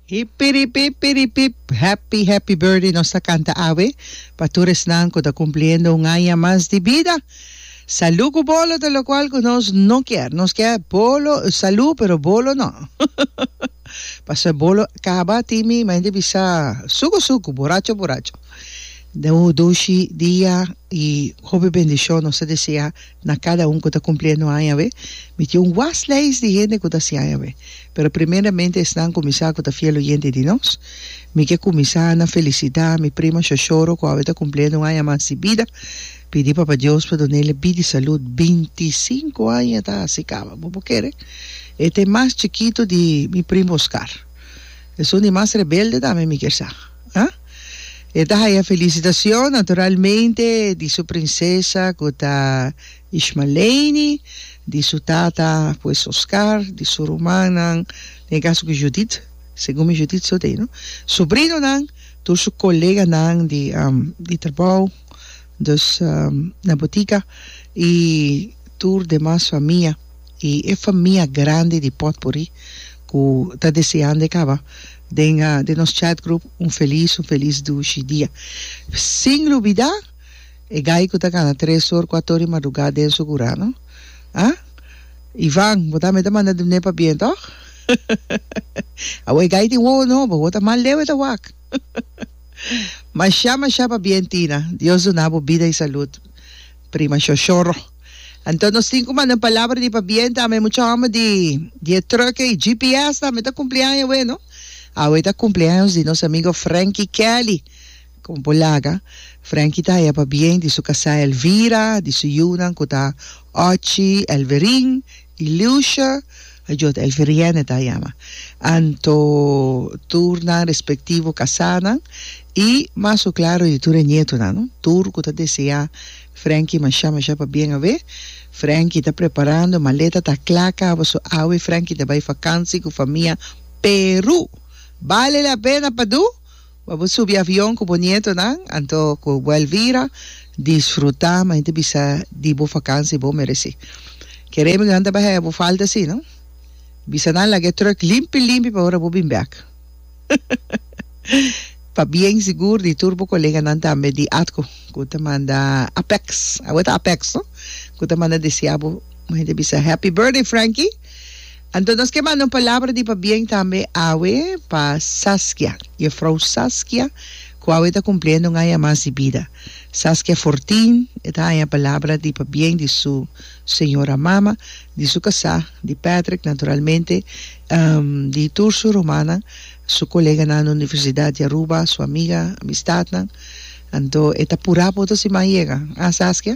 Hipiripip piripip happy happy birthday nos ta canta awe pa tur esnan cu ta cumpliendo un aña mas di bida salud cu bolo ta locual cu nos no kier nos kier bolo salud pero bolo no pasobra bolo caba tin mi mente bisa sucu sucu boracho boracho dushi dia y hopi bendicion nos ta desea Na kada un ku ta kumpliendo aña we, mi tin un wast leis di hende ku ta hasi aña we. Pero primeramente esnan kuminsá ku ta fiel oyente di nos. Mi ke kuminsá na felisitá mi primo Xoxoro ku awe ta kumpliendo un aña mas di bida. Pidi Papa Dios pa dun'el bida i salud. Binti i sinku aña ta hasi kaba, bo por kere? E ta e mas chikitu di mi primo Oscar. Esun di mas rebelde tambe mi kier sa. Ha? E ta haya felisitacion, naturalmente, di su princesa cu ta Ishmaleini, di su tata pues Oscar, di su rumannan, den e caso cu Judith, segun mi Judith so tei, no? Sobrinonan, tur su coleganan di, um, di trabou, dus, um, na botica, y tur demas famia. I e famia grandi di potpuri ku ta deseando e kaba den den nos chat group un felis un felis dushi dia sin lubidá e gai ku ta gana tres or kuato or di madrugá den sugurá no a Ivan bo tambe ta manda dun'é pa bien tòg awor e gai tin wowo nobo awor ta mal leu e ta wak mashá mashá pa bien Tina Dios duna bo bida i salud prima shoshoro. Anto nos tin kuma den palabra di pabienta ami mucha homber di di e truke y GPS tambe ta cumpli aña awe no. Awe ta cumpleaños di nos amigo Frankie Kelly. Como por laga Frankie ta haya pabien di su casa Elvira, di su yiunan cu ta Ochi, Elverin y Lucia, ajo ta Elverienne ta yama. Anto tur nan respectivo casanan y mas cu claro di tur e nietonan no. Tur cu ta desea Frankie, Masha masha pa bien awe. Frankie ta preparando maleta ta cla cabo so awe Frankie ta bay fakansi cu famia Peru. Bale la pena pa do pa bo subi avion cu bo nietonan anto cu bo Elvira disfruta ma hende bisa di bo fakansi bo mereci. Kere mi cu nan ta bay haya bo falta si no. Bisa nan laga e truck limpi limpi pa ora bo bin bek. Pa bien sigur di tur bo koleganan tambe di atco cu ta manda Apex, awe ta Apex no, cu ta manda desea bo, un hende a bisa Happy Birthday Franky! Anto nos ke manda un palabra di pa bien tambe awe pa Saskia, Juffrouw Saskia, cu awe ta cumpliendo un aña mas di bida. Saskia Fortin e ta haña palabra di pa bien di su señora mama, di su casá, di Patrick naturalmente, Di tur su rumannan, su koleganan na universidat di Aruba, su amiga, amistatnan. Anto e ta purá pa otro siman yega. Ah, Saskia,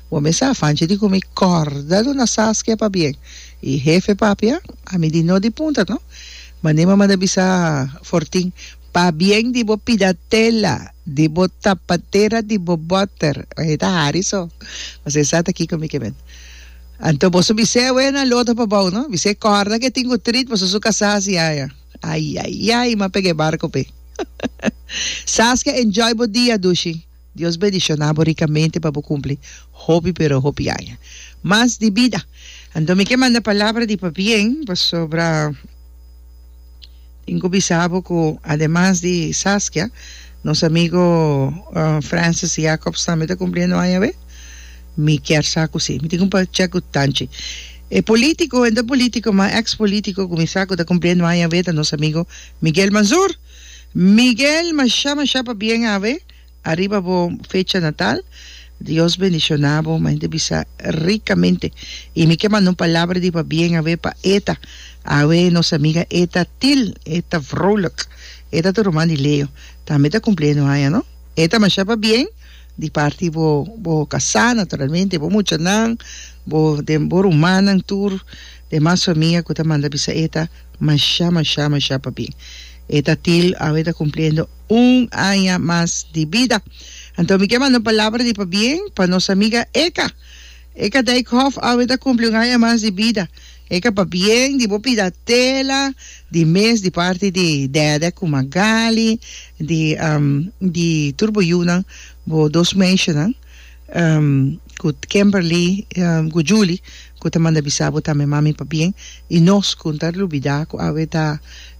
bo mes a fanchi di ku mi kòrda do na Saskia pabien. I hefe papia, ami di no di punta no. Manera bo manda bisa Fortin, pabien di bo pidatela, di bo tapatera, di bo bòter. Bai ta hari so. Mas esaki ta kiko mi ke mende. Anto boso bis'é awé na lota pa bou no, bis'é kòrda ke tin ku trit paso su kasá hasi yaya. Ayayay ma pega e barko pe. Saskia enjoy bo dia dushi. Dios bendishoná bo rikamente pa bo kumpli hopi pero hopi aña mas di bida. Anto mi ke manda palabra di pabien pasobra. Tin cu bisa bo cu ademas di Saskia, nos amigo Francis Jacobs tambe ta cumpliendo aña awe? Mi kier sa cu si. Mi tin cu check cu tanchi. E politico, e no ta politico, ma ex politico cu mi sa cu ta cumpliendo aña awe ta nos amigo Miguel Manzur. Miguel, masha masha pabien awe. Ariba bo fecha natal Dios bendiciona bo mende bisa ricamente y mi ke manda un palabra di pabien awe pa Eta awe nos amiga Eta Thiel Eta Vrolijk Eta ta ruman di Leo tambe ta cumpliendo aña no Eta masha pabien di parti bo bo casa naturalmente bo mucha nan bo den bo rumannan tur demas famia cu ta manda bisa Eta masha masha masha pabien Eta Thiel awe ta cumpliendo un aña mas di bida. Anto mi ke manda un palabra di pabien pa nos amiga Eka. Eka Dijkhoff awe ta kumpli un aña mas di bida. Eka pabien di bo pida tela di mes di parti di Dede ku Magali di um di tur bo yunan bo dos meishanan um ku Kimberly um ku Julie ku ta manda bisa bo tambe mami pabien i nos ku no ta lubida ku awe ta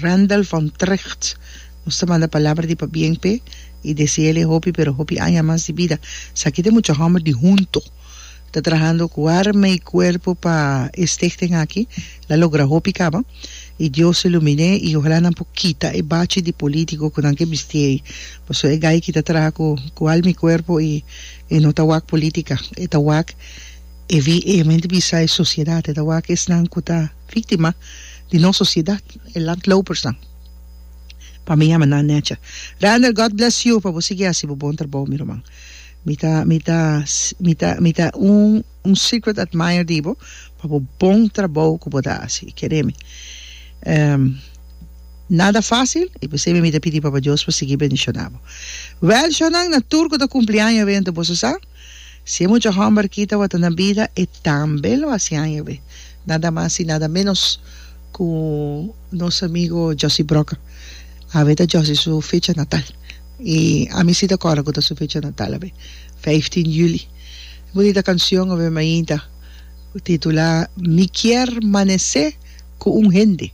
Randall van Trecht, nos ta manda palabra di pabien p'e y desea'le hopi pero hopi aña mas di bida. Esaki ta e mucha homber di hunto ta trahando cu arma y cuerpo pa e stichting aki la logra hopi caba y Dios e lumin'e y ojalá nan por kita e bachi di politico cu nan ke bisti ey pasobra e gayki ta traha cu alma y cuerpo y e no ta wak politica e ta wak e VN mente bisa e sociedad e ta wak esnan cu ta Víktima di nos sosiedat, e landlopersnan. Pa mi yama nan necha. Randel God bless you pa bo sigui hasi bo bon trabou mi ruman. Mi ta mi ta mi ta mi ta un un secret admire di bo pa bo bon trabou ku bo ta hasi. Kere mi. Ehm nada fácil i p'esei mi mi ta pidi Papa Dios pa sigui bendishoná bo. Wèl shònan na tur ku ta kumpli aña a wente boso sa? Si e mucha hòmber kita wata na bida, e tambe lo hasi aña be, nada mas i nada ménos ku nos amigu Josy Broca. Awe ta Josy su fecha natal, i ami si ta kòrda ku ta su fecha natal awe, vijftien juli. E bunita kanshon awe mainta titulá Mi kier manesé ku un hende.